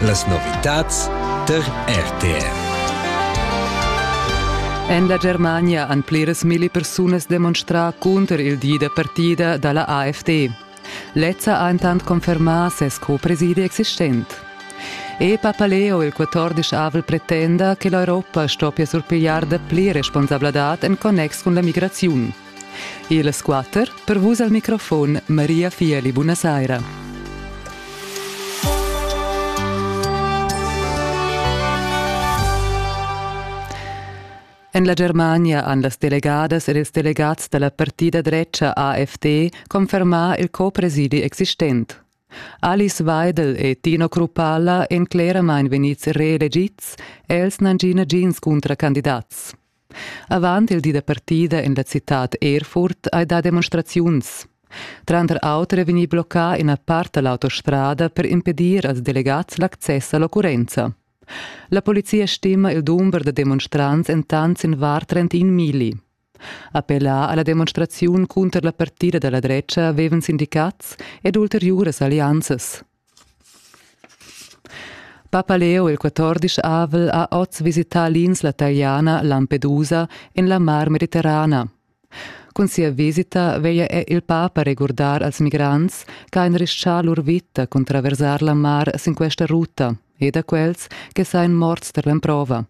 Las novitads tar RTR. En la Germania han pliras milli persunas demonstrà cunter il di da partida da la AfD. Lezza ha intant confermà ses co-presidi existent. E Papaleo, il 14-avel, pretenda che l'Europa stoppia surpigliar dapli responsabladad en connex cun la migraziun. Illas quatter per vus al microfon Maria Fieli, buonasera. En la Germania han las delegadas ed ils delegats da la partida drecha AfD confermà il co-presidi existent. Alice Weidel e Tino Krupalla èn cleramain vegnids reelegids, els n'han gì nagins cuntracandidats. Avant il di da partida en la citad Erfurt hai dà demonstraziuns. Tranter auter è vegnì bloccà ina part da l'autostrada per impedir als delegads l'access a l'occurrenza. La polizia stima il dumber da demonstrants entant sin var 31 mili. Appellà a la demonstraziun cunter la partida da la dretga avevan sindicats ed ulteriuras allianzas. Papaleo il quatordisch avel ha oz visità l'insla taliana Lampedusa en la Mar Mediterrana. Cun sia visita veglia è il papa regurdar als migrants che han rischà lur vita cun traversar la mar sin questa ruta e da quels che sain morts per l'emprova.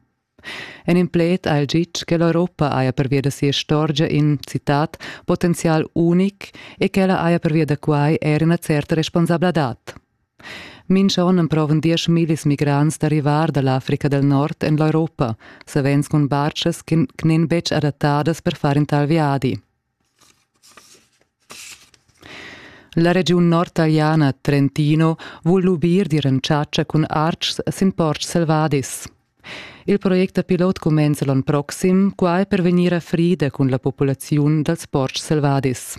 En in pled ha el ditg che l'Europa haja pervia da sia istorgia in citat potenzial unic e ch'ella haja pervia da quai er ina certa responsabladad. Mincha on emprovan diesch millis migrants da rivar da l'Africa del Nord en l'Europa, savens cun bartschas che n'en betg adattadas per far in tal viadi. La regiun nordtaliana Trentino vul lubir d'ir en chatscha cun artgs sin portgs selvadis. Il project da pilot cumenza l'onn proxim, quai per vegnir a frida cun la populaziun dals portgs selvadis.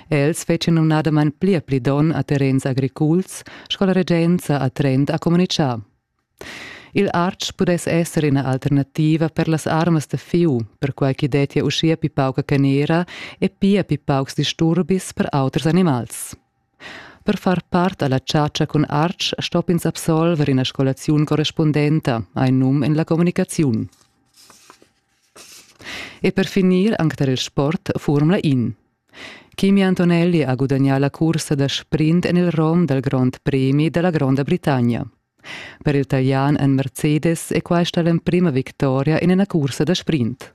Els fetschan numnadamain pli e pli donn a terrens agriculs, sco la regenza a Trent ha communitgà. Il artg pudess esser ina alternativa per las armas da fieu, perquai ch'i dettia uschia pli pauca canera e pia pli paucs disturbis per auters animals. Per far part a la chatscha cun artg stopp'ins absolver ina scolaziun correspundenta, hai num en la communicaziun. E per finir anc tar il sport furmla in. Kimi Antonelli ha gudagnà la cursa da sprint en il rom dal Grond premi da la Gronda Britannia. Per il Talian en Mercedes è questa l'emprima victoria in ina cursa da sprint.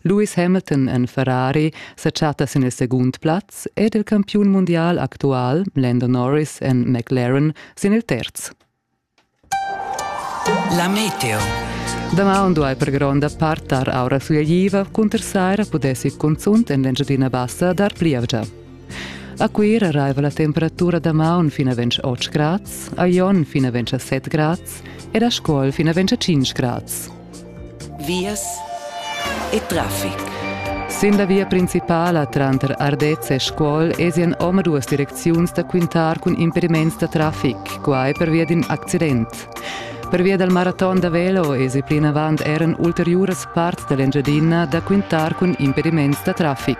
Lewis Hamilton en Ferrari sa chatta sin il segund plaz ed il campiun mundial actual Lando Norris en McLaren sin il terz. La meteo. Damaun duai per gronda part tar aura fugliva cunter saira pudessi cunzunt en l'Engiadina Bassa dar plievgia. A Cuira raiva la temperatura damaun fin a 28 grads, a Jon fin a 27 grads ed a Scuol fin a 25 grads. vias e traffic. Sin la via principala tranter Ardez e Scuol esien omaduas direcziuns da quintar cun impediments da traffic, quai pervia d'in accident. Pervia dal maraton da velo esi plinavant eran ulteriuras parts da l'Engiadina da quintar cun impediments da traffic.